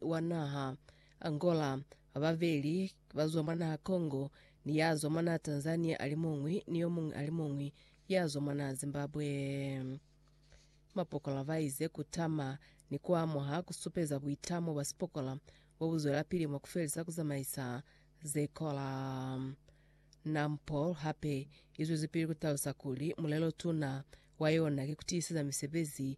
wa naha Angola, bababeli bazwa mwa naha Congo, ni yazwa mwa naha Tanzania alimuñwi ni yomuñwi alimuñwi yazwa mwa naha Zimbabwe. Mapokola baize kutama ni kuamuha kusupeza buitamo bwa sipokola bobuzwelapili mwa kufelisa kuzamaisa zekola. Nampol hape izwezipili kutalusa kuli mulelo tuna wa yona ki kutiiseza misebezi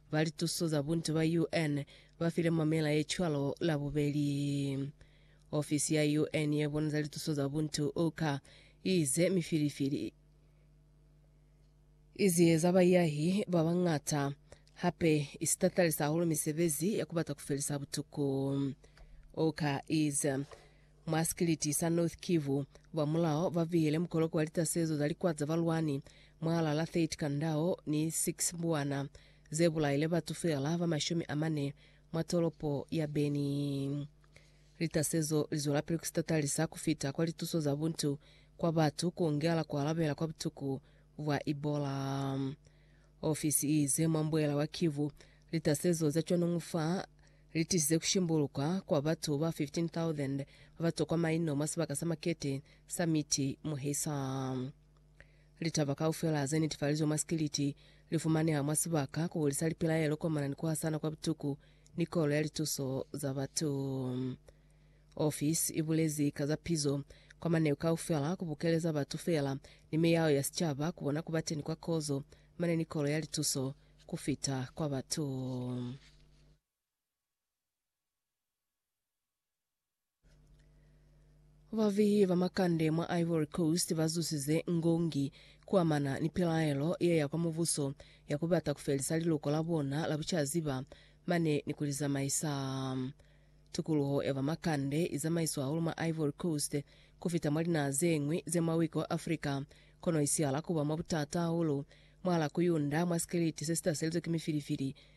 Ba lituso za buntu ba UN ba file mamela ye cwalo Labubeli. Ofisi ya UN ye bona za lituso za buntu, OCHA, i ize mifilifili i ziyeza baiyahi ba bañata, hape i sitatalisa hahulu misebezi ya ku bata ku felisa butuku. OCHA i ize, Mwa sikiliti sa North Kivu, ba mulao ba bihile mukoloko wa litasezo za likwa za balwani mwaalala 30 kandao ni 6 mbuwana, ze bulaile batu feela ba mashumi a mane mwa tolopo ya Beni. Litasezo li zwelapili ku sitatalisa ku fita kwa lituso za buntu kwa batu ku ongela ku alabela kwa butuku bwa Ebola. Ofisi i ize mwa mbuela wa Kivu, litasezo za cwanungu fa li tisize ku shimbuluka kwa batu ba 15,000 ba ba tokwa maino mwa sibaka sa makete sa Miti Muhisa. Litaba kaufela ze netifalizwe mwa sikiliti li fumaneha mwa sibaka ku hulisa lipilaelo komana ni ku hasana kwa butuku ni kolo ya lituso za batu. Ofisi i bulezi ka za pizo kwa maneu kaufela ku bukeleza batu feela ni miyao ya sicaba ku bona ku ba teni kwa kozo mane ni kolo ya lituso ku fita kwa batu. Bavihi ba makande mwa Ivory Coast ba zusize ngongi kuamana ni pilaelo ye ya kwa mubuso ya ku bata ku felisa liluko la bona la bucaziba mane ni ku li zamaisa. Tukuluho ya ba makande i zamaiswa hahulu mwa Ivory Coast ku fita mwa linaha ze ñwi ze mwa wiki wa Africa, kono i sihala ku ba mwa butata hahulu mwahal'a ku yunda mwa sikiliti se si taselizwe ki mifilifili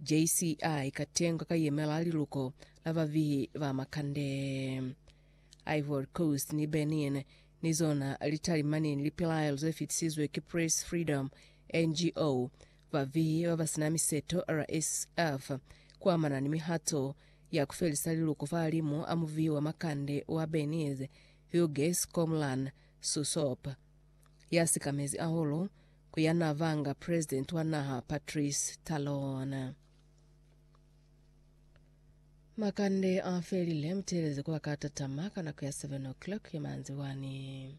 JCI ka tengwa ka yemela liluko la babihi ba makande. Ivory Coast ni Benin ni zona litalimaneni lipilaelo ze fitisizwe ki Press Freedom, NGO, babihi ba ba sina miseto, RSF, ku amana ni mihato ya ku felisa liluko fahalimu a mubihi wa makande wa Benin, Hugues Komlan Sousop, ya sikamezi ahulu ku ya n'a vanga president wa naha Patrice Talon. Makande a felile, muteeleze ku ba ka tatama ka nako ya 7 o'clock ya manzibwani.